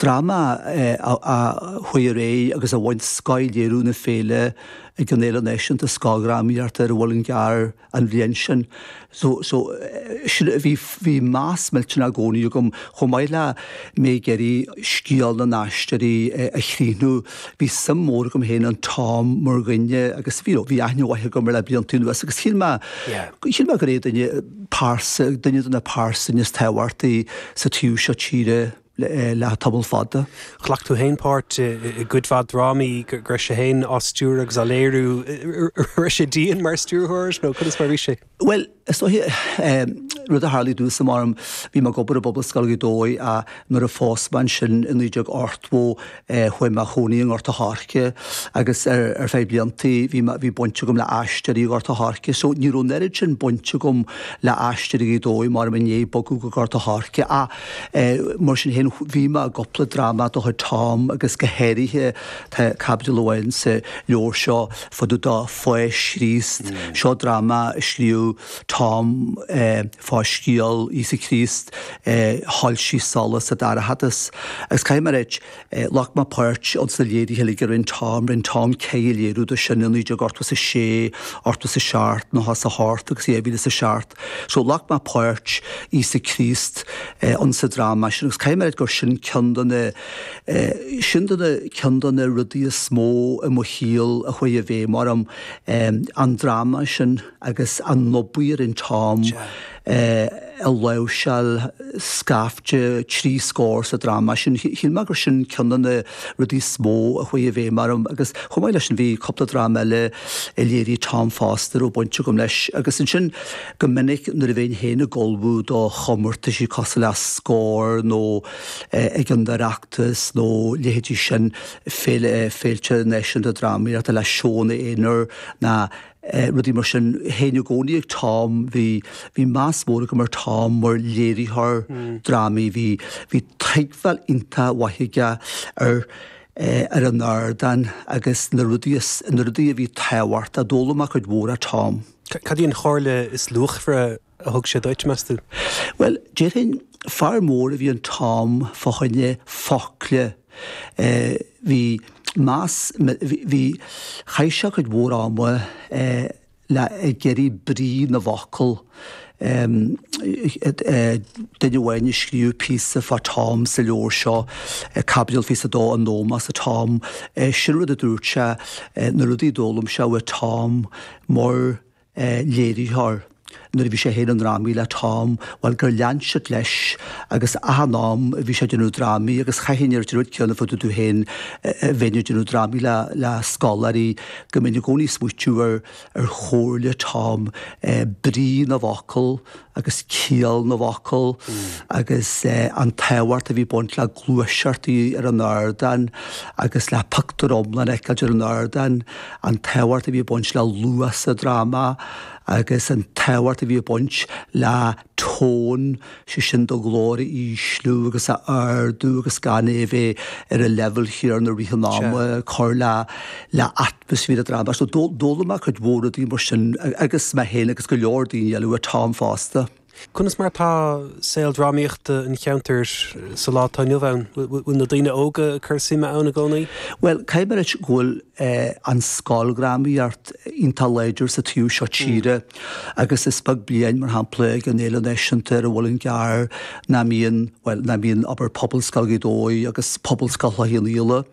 dráma a chuaigh ar aghaidh agus a bhain Scothléiriú na féile ag an Fhéile Náisiúnta Scoildrámaíochta ar an Mhuileann gCearr an bhliain sin. So, so, sin, bhí, bhí meas millteanach i gcónaí agam, chomh maith le mé ag iarraidh scéal na nAisteoirí a chríochnú, bhí suim mhór agam féin in Tom mar dhuine agus, you know, bhí aithne mhaith agam air le blianta anuas agus shíl mé, shíl mé gur é duine, pearsa, duine de na pearsain is tábhachtaí sa taobh seo tíre. le tamall fada. Ghlac tú féin páirt i gcuid mhaith drámaí go raibh sé féin á stiúradh agus á léiriú. An raibh sé dian mar stiúrthóir nó conas mar a bhí sé? Bhuel, is dóiche rud a tharla i dtús ama, em, bhí mé ag obair i bPobalscoil Ghaoth Dobhair ach nuair a phós mé ansin i 1980, Chuaigh mé a chónaí i nGort an Choirce agus ar feadh blianta bhí baint agam le Aisteoirí Ghort an Choirce so ní raibh an oiread sin baint agam le Aisteoirí Ghaoth Dobhair mar mé i ndiaidh bogadh go Gort an Choirce ach mar sin féin bhí mé i gcúpla dráma de chuid Tom agus go háirithe tá caibidil amháin sa leabhar seo fá dtaobh de Pháis Chríost. Seo dráma a scríobh Tom fá scéal Íosa Críost a shoilsigh solas sa dorchadas, agus caithfidh mé a rá, ghlac mé páirt ins na léirithe uilig a rinn Tom, rinn Tom ceithre léiriú do sin i naoi déag ochtó is a sé, ochtó is a seacht, nócha is a hocht agus dhá mhíle is a seacht. So ghlac mé páirt Íosa Críost ins an dráma sin agus caithfidh mé a rá gur sin ceann de na, sin de na, ceann de na rudaí is mó i mo shaol a chuaigh i bhfeidhm orm, an dráma sin. agus an obair a rinn Tom ag láimhseáil scaifte trí scór sa dráma sin. Shíl mé gur sin ceann de na rudaí is mó a chuaigh i bhfeidhm orm agus chomh maith leis sin bhí cúpla dráma eile a léirigh Tom fosta a raibh baint agam leis agus ansin go minic nuair a bheinn féin ag ullmhú do chomórtaisí cosúil le Scór nó ag an Oireachtas nó leithéidí sin, féilte náisiúnta drámaíochta le seónna aonair nó. rudaí mar sin. Théinn i gcónaí ag Tom, bhí, bhí meas mór agam ar Tom mar léiritheoir drámaí, bhí, bhí tuigbheáil iontach mhaith aige ar, ar an ardán agus na rudaí is, na rudaí a bhí tábhachtach, d'fhoghlaim mé cuid mhór ó Tom. Cad í an chomhairle is luachmhaire a thug sé duit, meas tú? Bhuel, déarfainn, fear mór a bhí in Tom fá choinne focla. Bhí meas, bhí, chaith sé cuid mhór ama le, ag iarraidh brí na bhfocal. Duine amháin a scríobh píosa fá Tom sa leabhar seo, caibidil fiche is a dó, In Ómós do Tom, sin rud a dúirt sé, na rudaí a d'fhoghlaim sé uaidh Tom, mar a léiritheoir nuair a bhí sé féin i ndrámaí le Tom, bhuel, gur lean sé leis agus achan am a bhí sé ag déanamh drámaí agus chaithfinn a ráit an rud céanna fá dtaobh de féin nuair a bheinn ag déanamh drámaí le scoláirí go mbeinn i gcónaí ag smaoitiú ar chomhairle Tom, brí na bhfocal. agus ciall na bhfocal agus an tábhacht a bhí ag baint le gluaiseachtaí ar an ardán agus le pictiúr iomlán a fheiceáil ar an ardán, an tábhacht a bhí ag baint le luas sa dráma agus an tábhacht a bhí ag baint le tone, sé sin do ghlór a ísliú agus a ardú agus gan é a bheith ar an leibhéal chéanna i rith an ama, cur le bís i ndráma so d'fhoghlaim mé cuid mhór rudaí mar sin agus mé féin agus go leor daoine eile ó Tom fosta. Conas mar atá saol drámaíochta an cheantair sa lá atá inniu ann? Bhfuil na daoine óga ag cur suime ann i gcónaí? Bhuel, caithfidh mé a ráit go bhfuil an scoildrámaíocht iontach láidir sa taobh seo tíre agus is beag bliain, mar shampla, ag an Fhéile Náisiúnta ar an Mhuileann gCearr nach mbíonn, bhuel, nach mbíonn obair Phobalscoil Ghaoth Dobhair agus Phobalscoil Chloich Cheann Fhaola.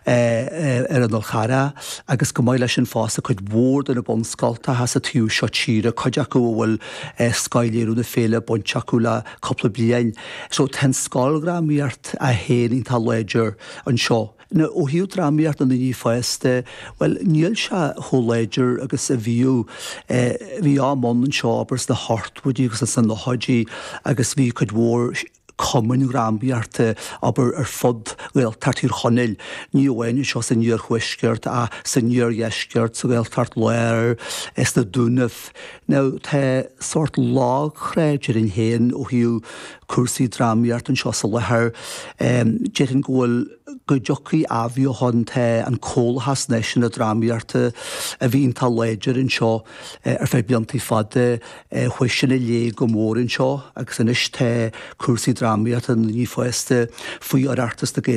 ar an Fhál Carrach agus chomh maith leis sin fosta cuid mhór de na bunscoltacha sa taobh seo tíre, cuid acu a bhfuil scothléiriú na féile bainte acu le cúpla bliain. So tá an scoildrámaíocht í féin iontach láidir anseo. Now ó thaobh drámaíocht na ndaoine fásta, bhuel níl sé chomh láidir agus a bhíodh. Bhí am ann anseo abair sna hochtóidí agus sna nóchaidí agus bhí cuid mhór, cumainn drámaíochta, abair, ar fud Ghaeltacht Thír Chonaill, ní amháin anseo san iarthuaisceart ach san iardheisceart, sa Ghaeltacht Láir, sna Dúnaibh. Now, tá sórt lagthrá, déarfainn féin, ó thaobh cúrsaí drámaíochta anseo i láthair. Déarfainn go bhfuil, go dtiocfaidh athbheochan, tá an Comhlachas Náisiúnta Drámaíochta a bhí iontach láidir anseo ar feadh blianta fada, chuaigh sin i léig go mór anseo agus anois tá cúrsaí drámaíochta na ndaoine fásta faoi Oireachtas na Gaeilge.